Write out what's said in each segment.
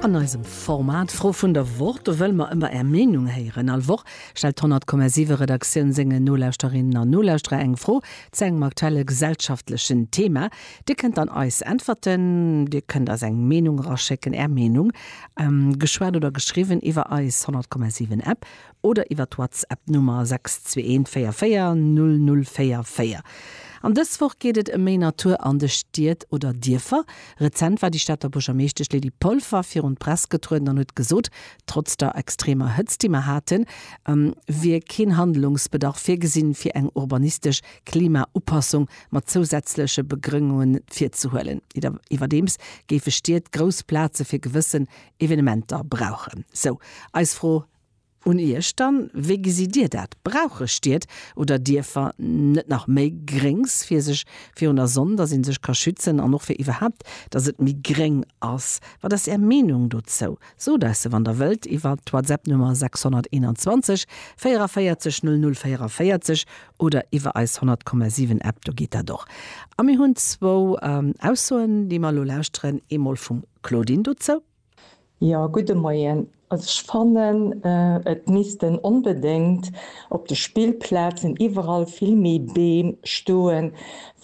An eisem Format Fro vun der Woch, do wëlle mer ëmmer Är Meenung héieren. All Woch stellt d'Honnertkommasiwe Redaktioun sengen Nolauschterinnen an Nolauschterer eng Fro zu engem aktuelle gesellschaftlechen Thema. Dir kënnt dann eis äntwerten, Dir kënnt eis eng Meenung eraschécken, Är Meenung, geschwat oder geschriwwen, iwwer eis Honnertkommasiwen App, oder iwwer d'Whatsapp d'Nummer 6214400044. An dës Woch geet et ëm méi Natur an de Stied oder Dierfer. Rezent war déi Stater Buergermeeschtesch Lydie Polfer virun d'Press getrueden an huet gesot, trotz der extremer Hëtzt, déi mer haten, wier keen Handlungsbedarf virgesinn, fir eng urbanistesch Klimaupassung mat zousätzleche Begrëngunge virzehuelen. Iwwerdeems géife Stied grouss Plaze fir gewëssen Evenementer brauchen. Sou eis Fro Un iech dann, wéi gesitt dir dat? Brauche Stied oder Dierfer net nach méi Gréngs fir sech virun der Sonn, datt ee sech ka schützen an och fir iwwerhaapt, datt et méi gréng ass? Wat ass är Meenung dozou? Sot eis se wann der wëllt iwwer d'Whatsapp Nummer 621 44 00 44 oder iwwer eis 100,7 App, do geet dat och. A mir hunn zwou Aussoen déi mer elo lauschteren, eemol vum Claudine dozou. Jo, gudde Moien. Also ech fannen, et missten onbedéngt op de Spillplazen iwwerall vill méi Beem stoen,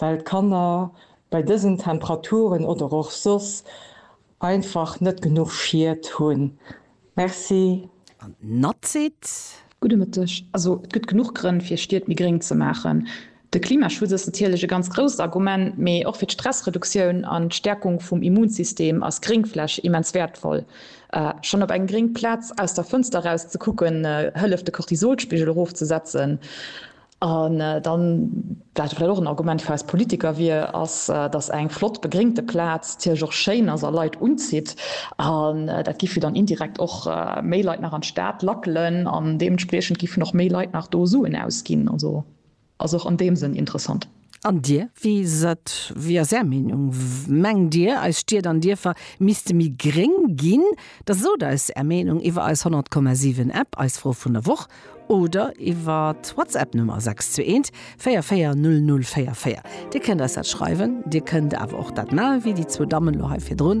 well d'Kanner bei dësen Temperaturen oder och soss einfach net genuch Schied hunn. Merci. An d'Natze seet. Gudde Mëtteg. Also et gëtt genuch Grënn, fir Stied méi gréng ze maachen. De Klimaschutz ass natierlech e ganz grousst Argument, mee och fir d'Stressreduktioun an d'Stäerkung vum Immunsystem ass Gréngfläch immens wäertvoll. Schonn op eng gréng Plaz aus der Fënster eraus ze kucken, hëlleft de Cortisolspigel erofzesetzen. An dann, wat vläicht och en Argument fir eis Politiker wier, ass, datt eng flott begréngte Plaz natierlech och schéin ass a Leit unzitt. An dat giff jo dann indirekt och méi Leit nach an d'Stad lackelen an deementspriechend giffen och méi Leit nach do Suen ausginn. Ass och an deem Sënn interessant. An Dir, wéi is et, wéi ass Är Meenung? Mengt Dir, eis Stied an Dierfer misste méi gréng ginn? Da sot eis Är Meenung iwwer eis 100,7 App, eis Fro vun der Woch oder iwwer d'Whatsapp Nummer 621 44 00 44. Dir kënnt eis dat schreiwen, Dir kënnt awer och dat maachen, wéi déi zwou Dammen elo hei virdrun.